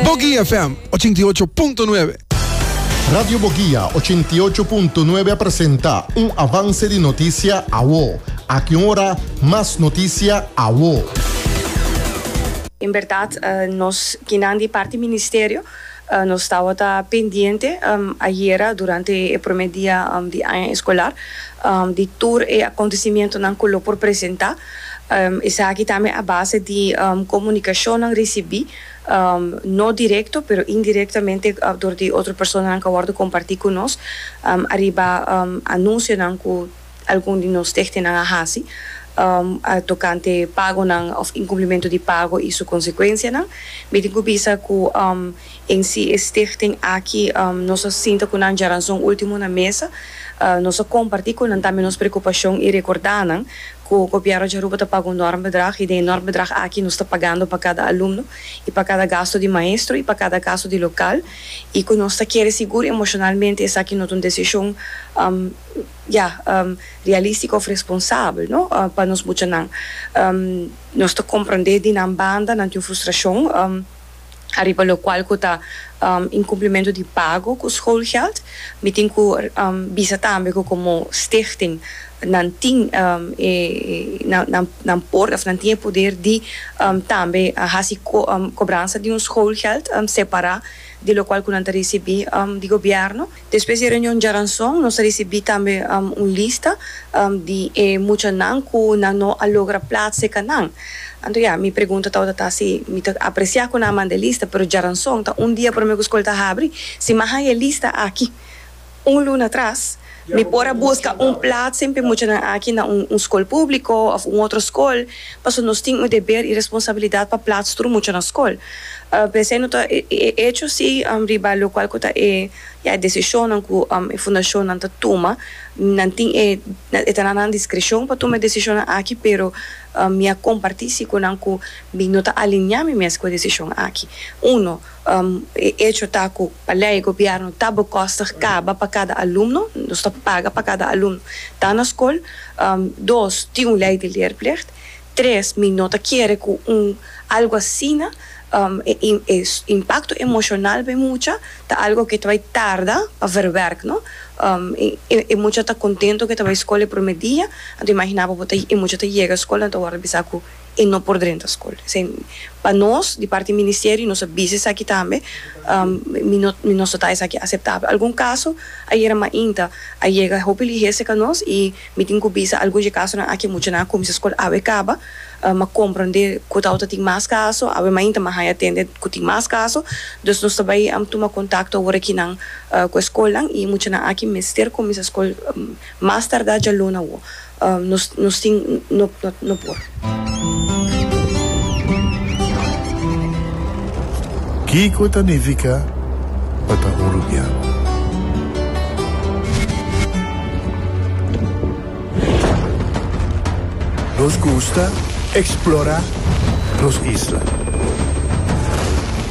Boguia FM ochenta i ocho punto nuebe. Radio Boguia ochenta i ocho punto nuebe a presenta un avance di noticia awo. Aki un ora mas noticia awo. En berdad nos kinan di parti Ministerio nos tabata pendiente ayera durante e prome dia di aña escolar di tur e acontecimientonan cu lo por presenta. Esaki tambe a base di comunicacionnan ricibi, no directo pero indirectamente door di otro personanan cu a wordo comparti cu nos ariba anuncionan cu algun di nos stichtingnan a haci tocante pagonan of incumplimentu di pago y su consecuencianan. Mi tin cu bisa cu En si e stichting aki nos a sinta ku nan djaranson último na mesa. Nos a kompartí ku nan tambe nos preokupashon i rekordá nan ku Gobièrnu di Aruba ta paga un nòrm bedrag i den e nòrm bedrag aki nos ta pagando pa kada alumno i pa kada gastu di maestro i pa kada gastu di lokal i ku nos ta kere sigur emoshonalmente esaki no ta un desishon ya realístiko òf responsabel no pa nos muchanan. Nos ta komprondé di nan banda nan tin un frustrashon. Ariba lokual ku ta inkumplimentu di pago ku schoolgeld. Mi tin ku bisa tambe ku komo stichting nan tin e nan por òf nan tin e poder di tambe hasi kobransa di un schoolgeld separá di lokual ku nan ta risibí di gobièrnu. Despues di e reunion djaranson nos a risibí tambe un lista di e muchanan ku nan no a logra plat seka nan. Anto ya, mi pregunta tabata ta si mi ta apresiá ku nan a manda e lista, pero djaranson ta un dia promé ku skol ta habri. Si mi a haña e lista aki un luna atras, mi por a buska un plat sin pa e muchanan aki na un skol públiko òf un otro skol. Paso nos tin un deber i responsabilidat pa plats tur mucha na skol. P'esei no ta e echo si riba lokual ku ta e ya e desishonnan ku e fundashonnan ta tuma. Nan tin e, e ta na nan diskreshon pa tuma e desishonnan aki, pero mi a kompartí si ku nan ku mi no ta alineá mi mes ku e desishon aki. Uno. E echo ta cu pa ley gobierno ta bo kostig caba pa cada alumno, nos ta paga pa cada alumno ta na scol. Dos, tin un ley di leerplicht. Tres, mi no ta kere cu un algo asina e impacto emocional pa e mucha ta algo cu ta bay tarda pa verwerk no. E mucha ta contento cu e ta bay scol e prome dia, anto imagina bo bo ta e mucha ta yega scol en ta worde bisa cu. e no por drenta skol. Esei pa nos di parti ministerio nos a bisa esaki tambe, mi no mi no so ta esaki aseptabel. Algun kaso ayera mainta a yega hopi ligese ka nos i mi tin ku bisa algun dje kasonan aki muchanan a kuminsá skol awe kaba, mi a komprondé ku ta ota tin mas kaso, awe mainta mi a haña tende ku tin mas kaso, dus nos ta bai a tuma kontakto awor aki nan ku e skolnan i muchanan aki mester kuminsá skol mas tardá djaluna awo. nos tin no por. Kiko ta nifiká pa ta hurupiá? Nos gusta eksplorá nos isla.